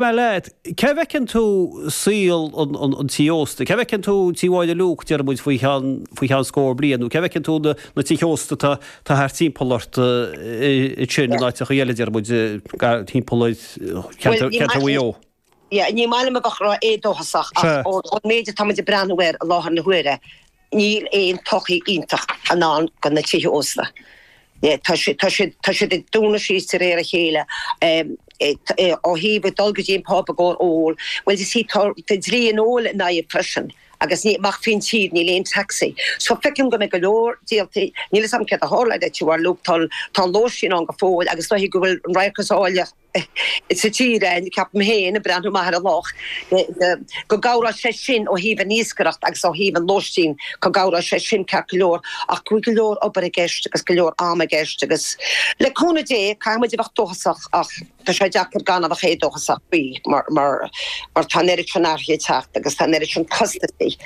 Dar leat, cé bhfeiceann tú saol an tí ósta? Cé bhfeiceann tú Tí Mháire Luke, déarfaidh muid, faoi cheann, faoi cheann scór bliain, nó cé bhfeiceann tú na tithe ósta atá thart timpeall ort ansin in áiteachaí eile, déarfaidh muid, timpeall ar Chontae Mhaigh Eo? Ní maith liom a bheith éadóchasach ach ón méid atá muid ag breathnú air i láthair na huaire, Níl aon todhchaí iontach i ndán do na tithe ósta. Tá siad ag dúnadh síos de réir a chéile. Ó thaobh ag dul go dtí an pub i gcomhair óil, bhuel you see tá dlí an óil in aghaidh freisin agus amach faoin tír níl aon taxi. So feicim go mbeidh go leor díoltaí, níl 'fhios a'm céard a tharlódh do Tí Mháire Luke, tá an lóistín ann go fóill agus dóichí go bhfuil an radharc is áille, sa tír é, ceapaim féin, ag breathnú amach ar an loch, go gcabhróidh sé sin ó thaobh an iascaireacht agus ó thaobh an lóistín, go gcabhróidh sé sin ceart go leor, ach go bhfuil go leor obair i gceist agus go leor ama i gceist agus, le cúnamh Dé, caithfidh muid a bheith dóchasach ach tá sé deacair gan a bheith éadóchasach faoi mar tá an oiread sin athruithe ag teacht agus tá an oiread sin costaisí.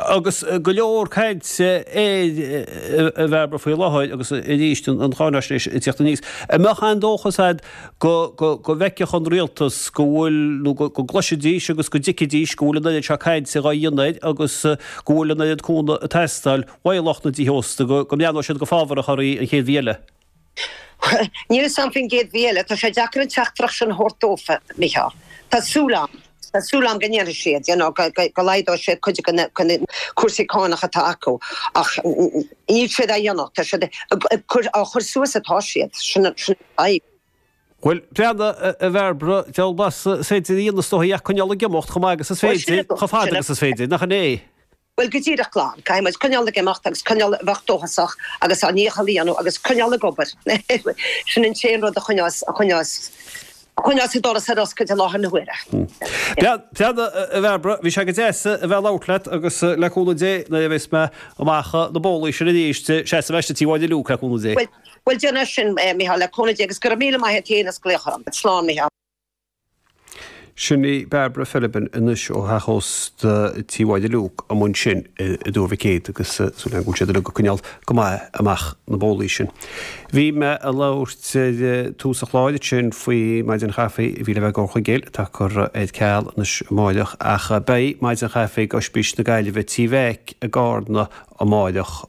Agus go leor cainte air, a Bhairbre, faoi láthair agus arís an cháinaisnéis ag teacht aníos, an mbeadh aon dóchas agat go bhfeicfeadh an rialtas go bhfuil, nó go gcloisfidís agus go dtuigfidís go bhfuil an oiread seo cainte dhá dhéanamh air agus go bhfuil an oiread cúnamh ag teastáil uaidh lucht na dTithe Ósta go mbreathnódh siad go fábharach oraibh an chéad mhí eile? Níl fhios a'm faoin gcéad mhí eile, tá sé deacair an teachtaireacht sin a thabhairt dófa, a Mhícheáil. Tá súil a'm, tá súil a'm go ndéanfaidh siad, you know, go laghdóidh siad cuid de na cúrsaí cánach atá acu ach níl siad á dhéanamh, tá siad ag cur, á chur suas atá siad, sin an fhadhb. Bhuel, breathnaigh, a Bhairbre, deabhal blas is féidir a dhéanamh is dóigh ach coinneáil ag imeacht chomh maith agus is féidir, chomh fada agus is féidir, nach 'in é? Bhuel, go díreach glan. Caithfidh muid coinneáil ag imeacht agus coinneáil a bheith dóchasach agus ár ndícheall a dhéanamh agus coinneáil ag obair. Sin an t-aon rud a choinneoidh, a choinneoidh, a choinneoidh an doras ar oscailt i láthair na huaire. Sea. Breathnaigh, a Bhairbre, bhí sé go deas a bheith ag labhairt leat agus le cúnamh Dé nuair a bheas mé amach na bólaí sin arís, seasfaidh mé isteach Tí Mháire Luke, le cúnamh Dé. Bhuel, bhuel, déan é sin, a Mhícheáil, le cúnamh Dé, agus go raibh míle maith a't fhéin as glaoch orm. Slán, Mhícheáil. Sin í Barbara Philbin anois ó theach ósta Tí Mháire Luke amuigh ansin i dTuar Mhic Éadaigh agus súil againn go bhfuil siad uilig ag coinneáil go maith amach na bólaí sin. Bhí mé ag labhairt ag tús an chláir ansin faoi Maidin Chaife a bhí le bheith ag Comhar Chuigéal atá curtha ar ceal anois amáireach ach beidh Maidin Chaife ag Ospís na Gaillimhe Tí Mheaic i gCarna amáireach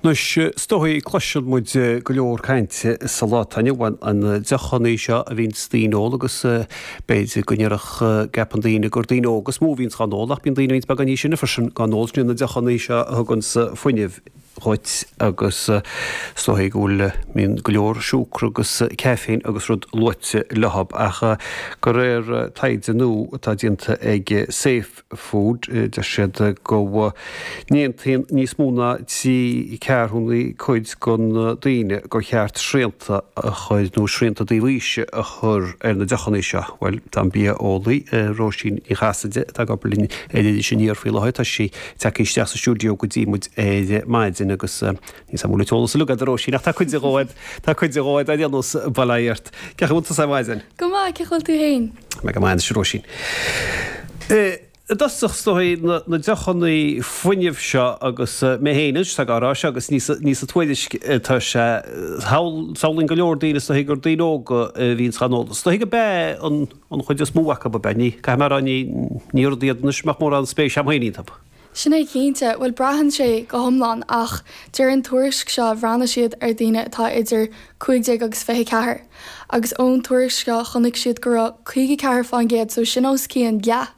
Anois, is dóigh, cloiseann muid go leor cainte sa lá atá inniu ann, an deochannaí seo a bhíonns daoine ag ól agus b'fhéidir go ndéarfadh, gceapann daoine gur daoine óga is mó a bhíonns dhá n-ól ach bíonn daoine roinnt beag níos sine freisin dhá n-ól, sin na deochannaí seo a thuganns fuinneamh dhuit agus is dóigh go bhfuil, mbíonn go leor siúcra agus caffeine agus rud luaite leo ach de réir taighde nua atá déanta ag Safe, food. Deir siad go n-aontaíonn níos mó ná trí ceathrúnaí cuid de na daoine gur cheart srianta a chur, nó srianta ó thaobh aoise a chur, ar na deochanna seo. Bhuel, tá an bia-eolaí, Róisín Ní Chasaide, atá ag obair linn ar Iris Aniar faoi láthair, tá sí tagtha isteach sa stiúideo go dtí muid ar maidin agus níl saghas mór le teolas uilig a'd a Róisín, ach tá cuide dhó a'd, tá cuide dhó a'd, ar aon nós, bail ó Dhia ort. Cén chaoi a bhfuil tusa ar maidin? Go maith, cén chaoi a bhfuil tú fhéin? Tá mé go maith anois, a Róisín. I dtosach, is dóigh, na deochannaí fuinnimh seo agus mé féin anois atá dhá rá, seo agus ní sa tuairisc atá sé, samhlaíonn go leor daoine, is dóigh, gur daoine óga a bhíonns dhá n-ól. Is dóigh gurb ea an chuid is mó acu, ab ea? Ní, caithfidh mé a rá, ní, ní rud iad anois a mbeadh mórán spéise a'm féin iontu. Sin é cinnte, bhuel braitheann sé go hiomlán ach deir an tuairisc seo bhreathnaigh siad ar daoine atá idir cúig déag agus fiche ceathair agus ón tuairisc seo chonaic siad go raibh caoga ceathair fán gcéad so sin os cionn leath,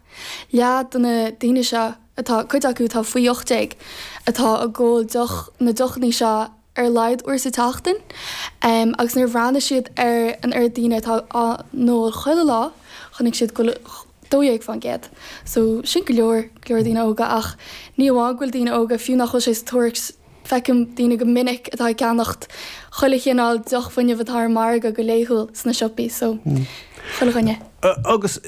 leath de na daoine seo atá, cuid acu atá faoi ocht déag, atá ag ól na deochannaí seo. ar a laghad uair sa tseachtain agus nuair a bhreathnaigh siad ar an oiread daoine atá á n-ól chuile lá chonaic siad go bhfuil 12%, so sin go leor, go leor daoine óga ach ní amháin go bhfuil daoine óga, fiú nach bhfuil sé sa tuairisc, feicim daoine go minic atá ag ceannacht chuile chineál deoch fuinnimh atá ar an margadh go laethúil sna siopaí, so chuile dhuine. Agus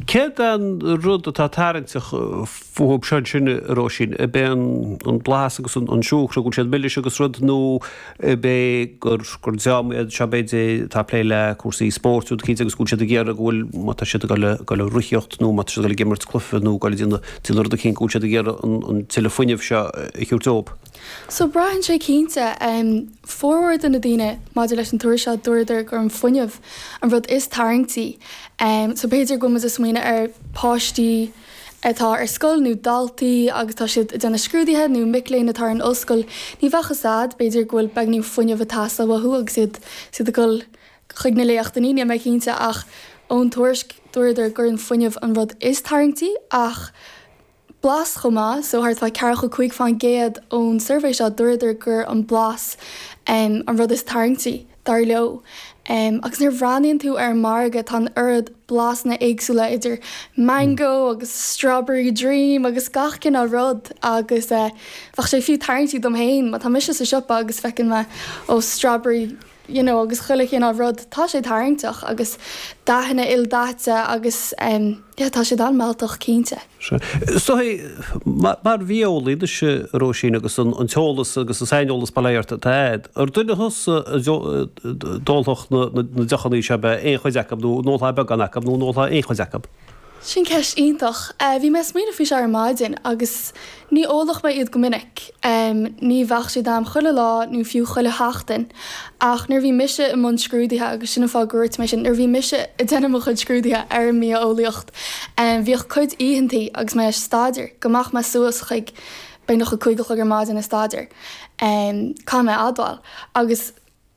céard é an rud atá tarraingteach fúthu seo ansin, a Róisín? Ab é an blas agus an siúcra, go bhfuil siad milis agus rud, nó ab é gur dream iad seo, b'fhéidir, atá ag plé le cúrsaí spóirt, rud cinnte, agus go bhfuil siad ag iarraidh go bhfuil, má tá siad ag dul ag rothaíocht nó má tá siad ag dul ag imirt cluife nó ag dul ag déanamh rud eicínt, go bhfuil siad ag iarraidh an tuilleadh fuinnimh seo a thabhairt dóibh? So braitheann sé cinnte. Formhór de na daoine, maidir leis an tuairisc seo, dúradar gur an fuinneamh an rud is tarraingtí. So b'fhéidir go bhfuil muid ag smaoineamh ar páistí atá ar scoil nó daltaí agus tá siad ag déanamh scrúduithe nó mic léinn atá ar an ollscoil, ní bheadh a fhios a'd, b'fhéidir go bhfuil beagáinín fuinneamh ag teastáil uathu agus iad ag dul chuig na léachtannaí, níl mé cinnte ach ón tuairisc dúradar gur an fuinneamh an rud is tarraingtí ach blas chomh maith, so thart fá ceathracha cúig fán gcéad ón suirbhé seo, dúradar gur an blas an rud is tarraingtí, dar leo. Agus nuair a bhreathnaíonn tú ar an margadh, tá an oiread blasanna éagsúla idir mango agus strawberry dream agus gach cineál rud agus bheadh sé fiú tarraingtí dom féin, má tá mise sa siopa agus feiceann mé, oh strawberry. you know, agus chuile chineál rud, tá sé tarraingteach agus dathanna ildaite agus em, yeah, tá siad an-mealltach cinnte. Sothuigthe. Mar bhia-eolaí anois, a, Róisín, agus an t-eolas agus an saineolas ar fad atá a'd, ar duine thusa a d'ólfadh na deochannaí seo, beag ná aon chuid acu nó an ólfadh beagán acu nó an ólfadh aon chuid acu? Sin ceist iontach. Bhí mé ag smaoineamh faoi seo ar maidin agus ní ólfadh mé iad go minic, ní bheadh siad a'm chuile lá nó fiú chuile sheachtain, ach nuair a bhí mise i mbun scrúdaithe, agus sin an fáth go ndúirt mé sin, nuair a bhí mise ag déanamh mo chuid scrúdaithe ar an mbia-eolaíocht, bhíodh cuid oícheantaí agus mé ag staidéar go mbeadh mé suas chuig, beagnach, a cúig a chlog ar maidin ag staidéar, caithfidh mé a admháil, agus.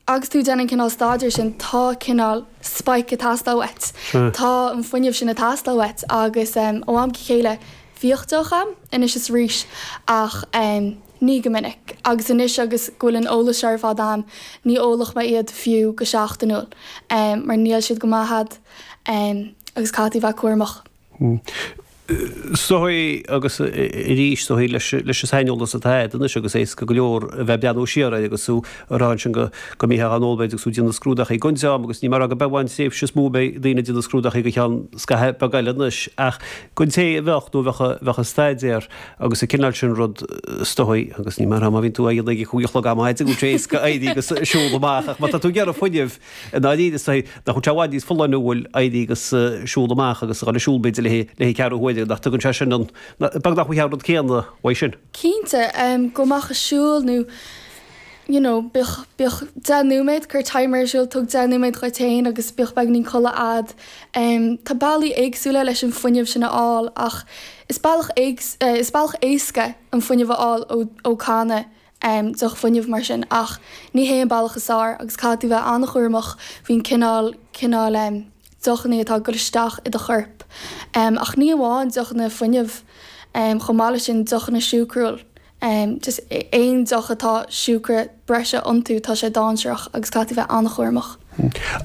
Agus tú ag déanamh an cineál staidéir sin, tá cineál spike ag teastáil uait, tá an fuinneamh sin ag teastáil uait agus ó am go chéile bhíodh deoch a'm, anois is arís ach ní go minic agus anois agus go bhfuil an eolas seo ar fad a'm, ní ólfadh mé iad fiú go seachtainiúil mar níl siad go maith a'd agus caithfidh tú bheith cúramach. Hm. Sothuigthe é agus arís sothuigthe leis, leis an saineolas atá agat anois agus éasca go leor a bheith ag breathnú siar air agus tú ag rá ansin go, go mbeitheá in ann ollmhéid agus tú ag déanamh scrúdaithe i gconte, ámh, agus ní mar rogha ar bith amháin tréimhse is mó a mbeidh daoine ag déanamh scrúdaithe go ceann scaithimh beag eile anois ach don té a bheadh nó a bheadh, bheadh ag staidéar agus an cineál sin rud stoitheadh agus ní mar rogha má bhíonn tú á dhéanamh ag a cúig a chlog am a fhaide go bhfuil sé éasca éirí agus siúl amach ach má tá tú ag iarraidh fuinneamh I ndáiríre, is dóigh nach bhfuil sé i bhfad níos folláine, bhuel, éirí agus siúl amach agus a dhul ag siúl, b'fhéidir, le haghaidh ceathrú huaire, nach dtugann sé sin an, beagnach, an rud céanna uaidh sin? Cinnte, gabh amach ag siúl nó, you know, bíodh, bíodh deich nóiméad, cuir timer ar siúl, tóg deich nóiméad dhuit féin agus bíodh beagainín codladh a'd. Tá bealaí éagsúla leis an fuinneamh sin a fháil ach is bealach éasca an fuinneamh a fháil ó, ó canna. deoch fuinneamh mar sin, ach ní hé an bealach is fearr agus caithfidh tú bheith an-chúramach faoin gcineál, cineál deochannaí atá ag dul isteach i do chorp, ach ní amháin deochanna fuinnimh, chomh maith leis sin deochanna siúcrúil, just aon deoch atá siúcra breise iontu, tá sé dáinsearach agus caithfidh tú bheith an-chúramach.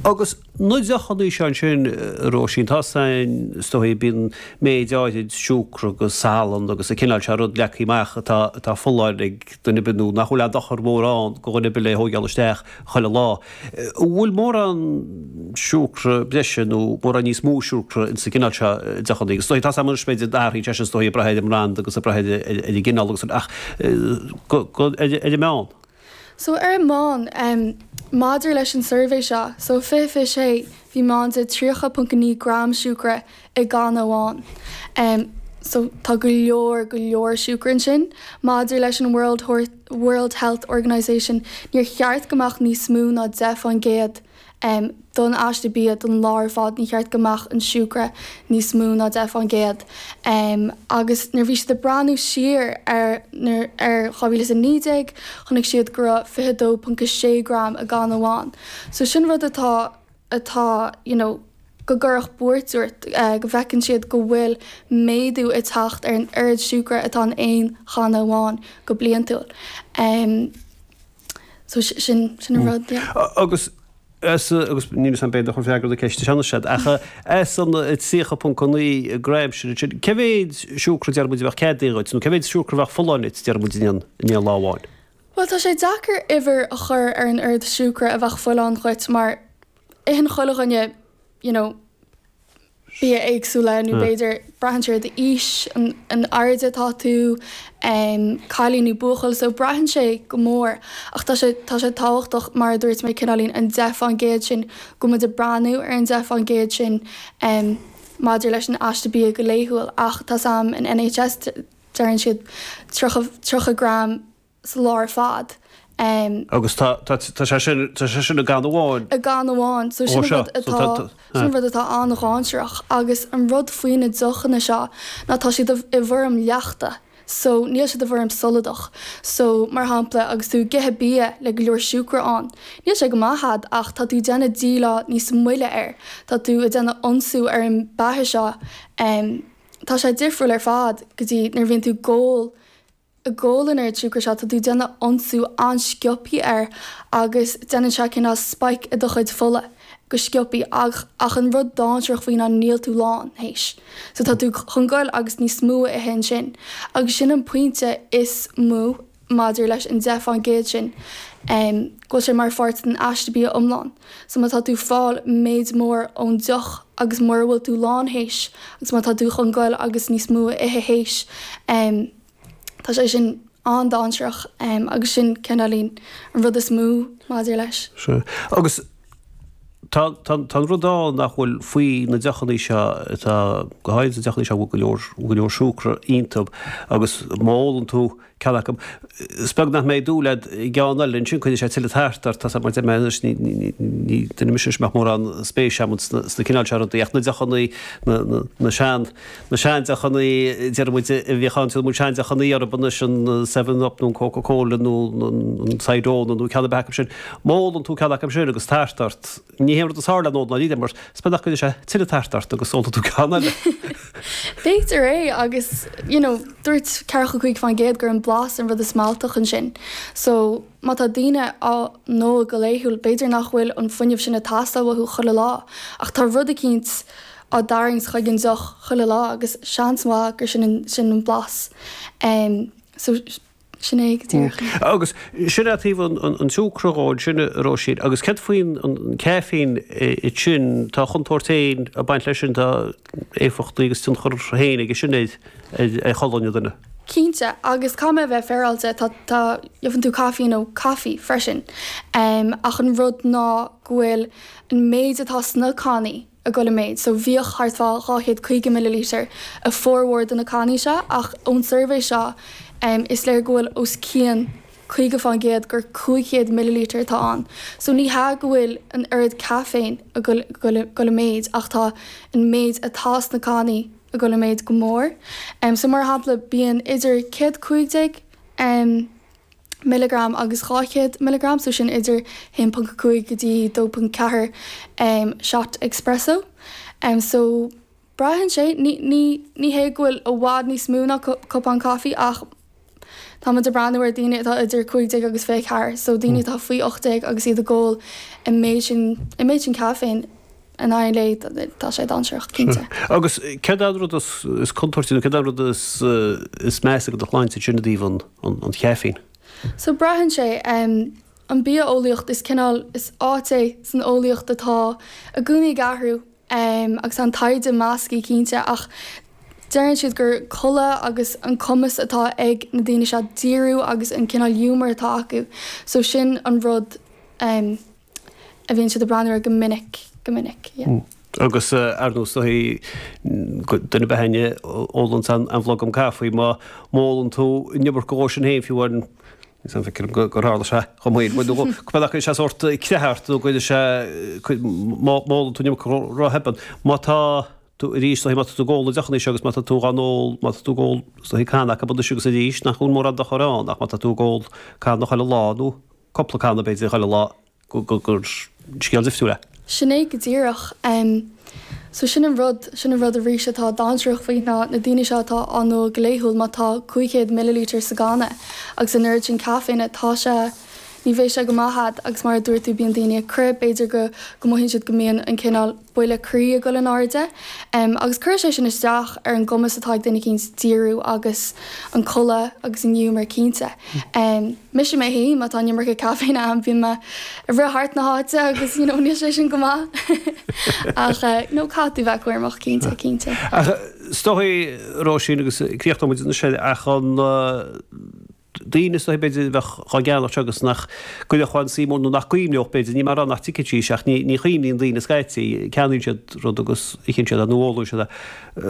Agus Na deochanna seo ansin, a Róisín. Tá a fhios a'm, is dóigh, bíonn méid áirid siúcra agus salann agus an cineál seo rud leagtha amach atá folláin ag duine ar bith nó nach bhfuil aon dochar mór ann go dhuine ar bith le thóigeáil isteach chuile lá. An bhfuil mórán siúcra breise nó mórán níos mó siúcra insa gcineál seo deochannaí? Is dóigh, tá a fhios a'm, anois b'fhéidir go n-athraíonn sé sin is dóigh ag brath ar an mbranda agus ag brath ar an gcineál agus, ach go, ar an meán. So ar an meán, maidir leis an suirbhé seo, so 2026, bhí meán de 30.9 gram siúcra i gcanna amháin. So tá go leor, go leor siúcra ansin. Maidir leis an World Health Organization, níor cheart go mbeadh níos mó ná 10%. em, don aiste bia, don lá ar fad, ní cheart go mbeadh an siúcra níos mó ná deich fán gcéad. Em, agus nuair a bhí siad ag breathnú siar ar, ar 2019, chonaic siad go raibh fiche dó ponc a sé gram i gcanna amháin. So sin rud atá, atá, you know, go gcuirfeadh buairt ort, eh, go bhfeiceann siad go bhfuil méadú ag teacht ar an oiread siúcra atá in aon channa amháin go bliantúil. Em. So sin, sin an rud, yeah. Agus as, agus níl a fhios a'm b'fhéidir nach bhfuil freagra na ceiste seo anois a'd, ach as an 30.9 gram sin, cé mhéid siúcra deir muid a bheadh ceadaithe dhuit nó cé mhéid siúcra a bheadh folláin duit deir muid in aon, in aon lá amháin? Bhuel tá sé deacair uimhir a chur ar an oiread siúcra a bheadh folláin dhuit mar, Itheann chuile dhuine you know bia éagsúla nó b'fhéidir braitheann sé ar d'aois, an airde atá tú, cailín nó buachaill, so braitheann sé go mór ach tá sé, tá sé tábhachtach mar a dúirt mé cineáilín an deich fán gcéad sin, go muid ag breathnú ar an deich fán gcéad sin maidir leis an aiste bia go laethúil ach tá a fhios a'm an NHS deireann siad tríocha, tríocha gram, sa lá ar fad. Agus tá sé sin, tá sé sin i gcanna amháin. I gcanna amháin. So sin an rud atá, sin an rud atá an-dháinséarach. Agus an rud faoi na deochanna seo ná tá siad i bhfoirm leachta. So níl siad i bhfoirm soladach. So, mar shampla, agus tú ag ithe bia le go leor siúcra ann, níl sé go maith dhuit ach tá tú ag déanamh díleá níos moille air. Tá tú ag déanamh ionsú ar an beatha seo. Tá sé difriúil ar fad go dtí nuair a bhíonn tú ag ól, ag ól an tsiúcra seo, tá tú déanamh ionsú an-sciopthaí air agus déanann sé cineál spike i do chuid fola go sciopthaí ach ach an rud dáinséarach faoi ná níl tú lán, théis. So tá tú chun goil agus níos mó a ithe ansin agus sin an pointe is mó maidir leis an deich fán gcéad sin, em, go bhfuil sé mar pháirt den aiste bia iomlán. So má tá tú fáil méid mór ón deoch agus mura bhfuil tú lán théis agus má tá tú chun goil agus níos mó a ithe théis em tá sé sin an-dáinsearach em agus sin cineáilín an rud is mó maidir leis. Sea. Agus tá tá tá an rud ann nach bhfuil, faoi na deochannaí seo atá go háirid na deochannaí seo bhfuil go leor go leor siúcra iontub agus má ólann tú ceann acu. Is beag nach mbeidh dúil agat i gceann eile ansin, cuireann sé tuilleadh tart ort. Tá sé, mar a deirim anois, ní duine mise anois a mbeadh mórán spéise agam sna cineál seo rudaí, ach na deochannaí, na sean, na seandeochannaí, déarfaidh muid, a bhíodh ann, tugann muid seandeochannaí orthu anois, an Seven Up nó an Coca Cola nó an Cidona nó ceann ar bith acu sin. Má ólann tú ceann acu sin agus tart ort. Ní haon rud is fearr le n-ól dáiríre, mar is beag nach gcuireann sé tuilleadh tairt ort agus ólfaidh tú ceann eile. B'fhéidir é, agus, you know, dúirt ceathracha a cúig fán gcéad gur an blas an rud is mealltaí ansin. So, má tá daoine á n-ól go laethúil, b'fhéidir nach bhfuil an fuinneamh sin ag teastáil uathu chuile lá, ach tá rud eicínt á dtarraingt chuig an deoch chuile lá, agus seans mhaith gur sin an, sin an blas. Em, so. Agus sin é taobh an tsiúcra dhó ansin, a Róisín. Agus cad faoin caiféin ansin? Tá a chontúirt féin ag baint leis sin, tá éifeachtaí agus tionchar féin aige sin ar cholainn an duine. Cinnte, agus caithfidh mé a bheith féaráilte, tá, tá, faigheann tú caiféin i gcaife freisin, ach an rud ná go bhfuil an méid atá sna cannaí, a ghoil i méid, so bhíodh thart fá 200 caoga millilítear i formhór de na cannaí seo ach ón suirbhé seo is léir go bhfuil os cionn 50 fán gcéad gur 500 millilítear atá ann, so ní hea go bhfuil an oiread caiféine a ghoil i méid ach tá an méid atá sna cannaí a ghoil i méid go mór, so mar shampla bíonn idir 115. milleagram agus 200 milleagram, so sin idir 1.5 go dtí 2.4 shot espresso. So braitheann sé, ní, ní, ní hé go bhfuil i bhfad níos mó ná cupán caife ach tá muid ag breathnú ar daoine atá idir 15 agus 24, so daoine atá faoi 18 agus iad ag ól an méid sin, an méid sin caiféine. in aghaidh an lae, tá sé dainséarach, cinnte. Agus céard é an rud is contúirtí, nó céard é an rud is measa do do shláinte ó thaobh an chaiféin? So, braitheann sé. An bia-eolaíocht, is cineál, is áit é san eolaíocht atá i gcónaí ag athrú agus tá an taighde measctha, cinnte, ach deireann siad gur codladh agus an cumas atá ag na daoine seo díriú agus an cineál ghiúmar atá acu, so sin an rud. a bhíonn siad ag breathnú air go minic, go minic, yeah. Agus ar ndóigh, is dóichí, duine ba shine ag ól an bhlogam caife, má ólann tú an iomarca dhó sin féin, fiú an, is é an feicim go gur tharla sé chomh maith le duine, go bhféadfadh sé sórt creathadh a chur ort nó go bhfuil sé, má ólann tú an iomarca dhó ró-theann. Má tá tú arís, má tá tú ag ól deochanna agus má tá tú gan ól, má tá tú ag ól canna acu anois agus arís, nach bhfuil mórán dochair ann ach má tá tú ag ól canna chuile lá nó cupla canna b'fhéidir chuile lá gur scéal difriúil é. Sin é go díreach. So sin an rud, sin an rud arís atá dainséarach faoi na daoine seo atá á n-ól go laethúil, má tá 500 millilítear sa gcanna agus an oiread sin caiféine, tá sé, ní bheadh sé go maith a'd agus mar a dúirt tú bíonn daoine ag crith, b'fhéidir go mothaíonn siad go mbíonn an cineál, buille croí ag dul in airde agus cuireann sé sin isteach ar an gcumas atá ag duine eicínt díriú agus an codladh agus an ghiúmar cinnte. Mise mé fhéin, má tá an iomarca caiféine ionam, bíonn mé ag rith thart na háite agus you know níl sé sin go maith ach eh no caithfidh tú bheith cúramach cinnte, cinnte. Ach is dóichí Róisín agus críochnóimid anois ach an eh, daoine is dóichí, b'fhéidir, a bheadh dhá gceannacht seo agus nach gcuirfeadh aon suim mhór nó nach gcuimhneodh, b'fhéidir, ní mar gheall nach dtuigfidís ach ní chuimhníonn daoine scaití, ceannaíonn siad rud agus itheann siad é nó ólann siad é.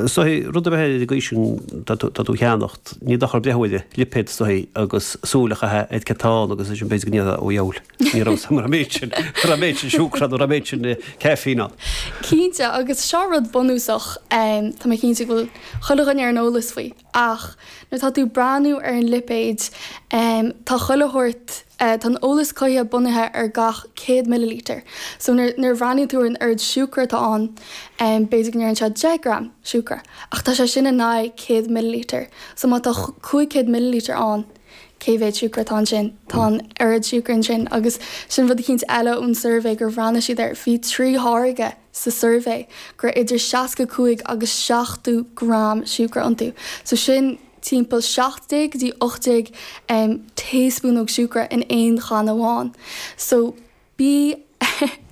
Is dóichí, rud ar bith ar aon chaoi a, tá tú, tá tú ag ceannacht, ní dochar breith ar an lipéad is dóichí agus súil a chaitheamh ar cad tá ann agus ansin b'fhéidir go ndéarfá, ó dheabhail, ní raibh 'fhios a'm go raibh an méid sin, raibh an méid sin siúcra ann, raibh an méid sin caffeine ann. Cinnte, agus seo rud bunúsach, tá mé cinnte go bhfuil chuile dhuine ar an eolas faoi, Ach nuair atá tú ag breathnú ar an lipéad, tá chuile shórt, tá an eolas cothaithe bunaithe ar gach 100 millilítear, so nuair, nuair a bhreathnaíonn tú ar an oiread siúcra atá ann, b'fhéidir go ndéarfadh sé 10 gram siúcra, ach tá sé sin in aghaidh 100 millilítear, so má tá 500 millilítear ann, cé mhéad siúcra atá ansin? Tá an oiread siúcra ansin, agus sin rud eicínt eile ón suirbhé gur bhreathnaigh siad air, bhí trí tháirge, sa suirbhé go raibh idir 65 agus 70 gram siúcra iontu, so sin timpeall 17 go dtí 18 taespúnóg siúcra in aon channa amháin. So bí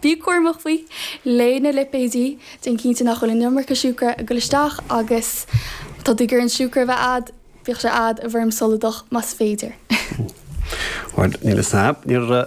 bí cúramach faoi, léigh na lipéidí, déan cinnte nach bhfuil an iomarca siúcra ag dul isteach agus má tá tú ag iarraidh an siúcra a bheith a'd, bíodh sé a'd i bhfoirm soladach más féidir. Bhuel, níl 'fhios a'm, níor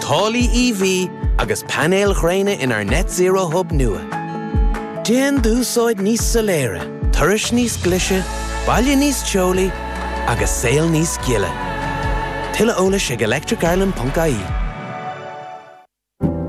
Táillí EV agus painéil ghréine inár Net Zero Hub nua. Déan d'úsáid níos soiléire, turais níos glise, baile níos teolaí agus saol níos gile. Tuilleadh eolais ag electricireland.ie.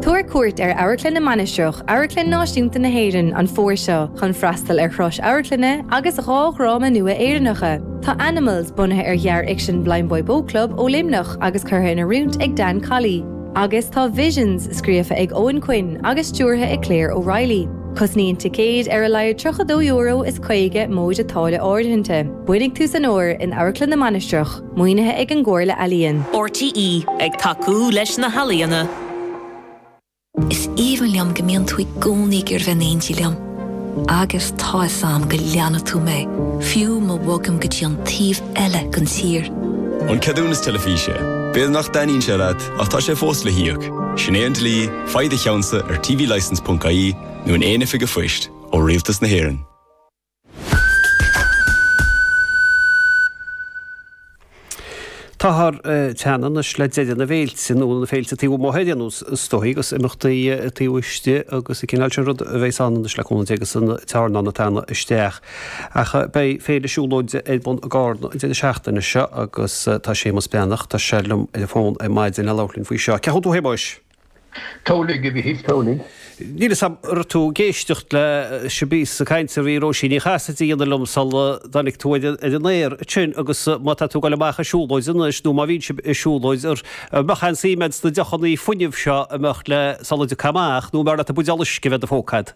Tabhair cuairt ar Amharclann na Mainistreach, Amharclann Náisiúnta na hÉireann, an fómhair seo chun freastal ar thuras amharclainne agus dhá dhráma nua Éireannacha. Tá Animals, bunaithe ar ghearr-fhicsean Blindboy Boatclub ó Luimneach, agus curtha in oiriúint ag Dan Colley, agus tá Visions scríofa ag Eoin Quinn agus stiúrtha ag Claire O'Reilly. Cosnaíonn ticéid ar a laghad €32 is caoga cent móide táille áirithinte. Bainfidh tú an-súp as in Amharclann na Mainistreach, maoinithe ag an gComhairle Ealaíon. RTÉ ag tacú leis na healaíona. Is aoibhinn liom go mbíonn tú i gcónaí ag iarraidh bheith in éindí liom. Agus tá fhios a'm go leanfaidh tú mé, fiú ma bhogaim go dtí an taobh eile den tír. An ceadúnas teilifíse. B'fhéidir nach dtaitníonn sé leat, ach tá sé fós le híoc. Sin é an dlí, faigh do cheannsa ar tvlicence.ie nó in aon oifig a' phoist, ó Rialtas na hÉireann. Táthar teann anois le deireadh na bhféilte, nó na féilte taobh amuigh ar aon nós, is dóigh, agus imeachtaí taobh istigh agus an cineál sin ruda a bheas ann anois le cúnamh Dé agus an t-airneán ag teannadh isteach. Ach beidh Féile Siúlóide ar bun i gCarna an deireadh seachtaine seo agus tá Séamus Breathnach, tá sé liom ar an bhfón ar maidin, le labhairt linn faoi seo. Cén chaoi a bhfuil tú a Shéamuis? Toghlaigh a bhí thíos Toghlaigh. Níl 'fhios a'm, an raibh tú ag éisteacht leis an bpíosa cainte a bhí Róisín Ní Chasaide a dhéanamh liom sul a dtáinig tú ar an aer ansin agus má tá tú ag goil amach ar siúlóid anois nó má bhíonn sibh ar siúlóid an mbeadh aon suim a'd sna deochannaí fuinnimh seo a mbeadh leat sula dtéann tú amach nó arbh fhearr leat an buidéal uisce a bheith in do phóca a'd?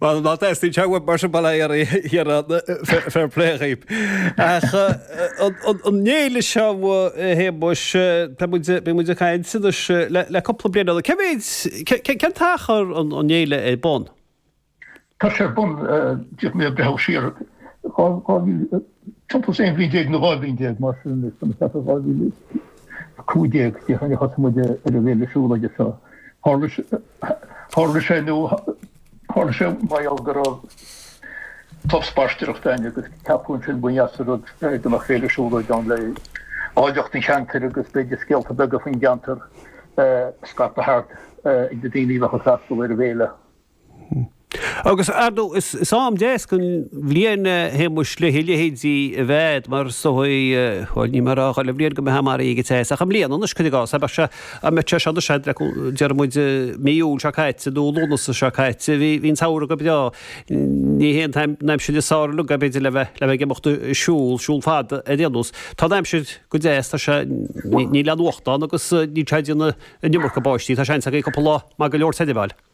Bhuel, ná dteastaíonn sé uaim mar sin, bail air, a Chiarán, fair play dhaoibh. Ach an fhéile seo, a Shéamuis, tá muid, tá muid ag caint anois le, le cúpla bliain anonn. Cé mhéid, cé, cén t-achar an, an fhéile ar bun? Tá sé ar bun, d'fhéadfaí a bhreithniú siar dhá, dhá mhí, Timpeall 11 bhliain nó 12 bhliain, mar sin, cheapfainn 2015, 2016 a thosaigh muid ar an bhféile siúlóide seo. Tharla sé, nó tharla sé mar gheall go raibh club spaisteoireachta againn agus ceapadh ansin go mba dheas an rud dá mbeadh féile siúlóide ann le áilleacht an cheantair agus b'fhéidir scéalta beaga faoin gceantar a scaipeadh thart ar na daoine a bheadh ag freastal ar an bhféile. Agus ar ndóigh is am deas den bhliain, a Shéamuis, le a leithéide a bheith a'd, mar so í, bhuel, níl mé a rá chuile bhliain go mbeifeá maraithe go deas, ach i mbliana anois, cuir i gcás, abair, sea, dá mbeadh sé seo anois a'd, deir muid mí Iúil seo caite, nó Lúnasa seo caite, bhí an samhradh go breá, ní hé an aimsir is fearr le haghaidh, b'fhéidir, le bheith ag imeacht ag siúl, siúl fada ar aon nós. Tá an aimsir go deas, tá sé, níl aon fhuacht ann agus níl sé ag déanamh an iomarca báistí, tá seans againn cúpla lá maith go leor a fháil.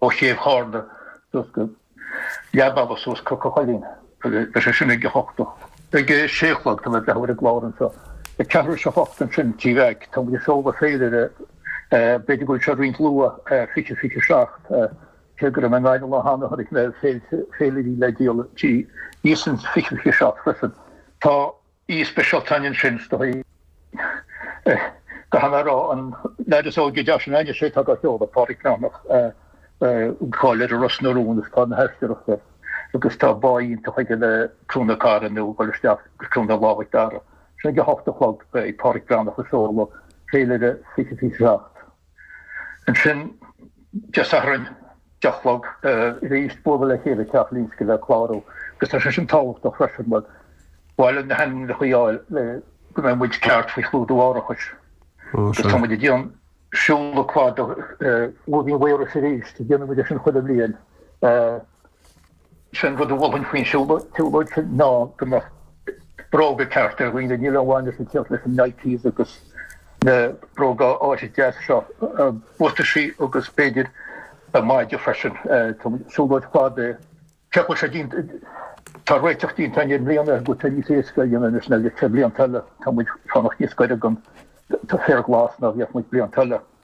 ó chéibh Charna suas go leath bealaigh suas Cnoc a' Choillín agus beidh sé sin ag a hocht a. Ag a sé a chlog tá mé ag breathnú ar an gclár anseo. Ag ceathrú théis a hocht ansin sa Tigh Mheaic, tá muid ag seoladh féilire, b'fhéidir go bhfuil sé roinnt luath, fiche, fiche seacht, cé go raibh mé i nGaillimh lá cheana chonaic mé féilirí le díol thíos ann fiche, fiche seacht freisin. Tá. Aoi speisialta againn ansin, is dóigh. Caithfidh mé a rá, an leaid is óige de na naíonna a sé atá dá sheoladh, Pádraig Breathnach, tá cáil air i Ros na Rún is tá an aisteoireacht aige agus tá báidh iontach aige le Cloch na Cora nó ag dul isteach go Cloch na Lámha ag Dara. Sin ag a hocht a chlog beidh Pádraig Breathnach ag seoladh féilire 2027. Ansin, Dé Sathairn, deich a chlog, arís ag bualadh le chéile i dteach Lynskey le clárú, agus tá sé sin tábhachtach freisin mar ba mhaith linn na hainmneacha a fháil le go mbeidh muid ceart faoi chlúdú árachais. Agus tá muid ag déan- siúl cladaigh ó Mhaínis go Maíros arís, déanann muid é sin chuile bhliain. Sé an rud a mholfainn faoin tsiúlóid sin ná go mbeadh bróga cearta ar dhaoine, níl aon mhaith a bheith ag tíocht leis na Nikes agus na bróga áille deasa seo, buataisí agus b'fhéidir maide freisin. Tá an tsiúlóid fada. Cé go bhfuil sé tá réiteach déanta againn i mbliana go bhfuil sé níos éasca a dhéanamh anois ná a bhí sé blianta eile, tá muid ag fanacht níos gaire don fhéar glas ná a bhíodh muid blianta eile.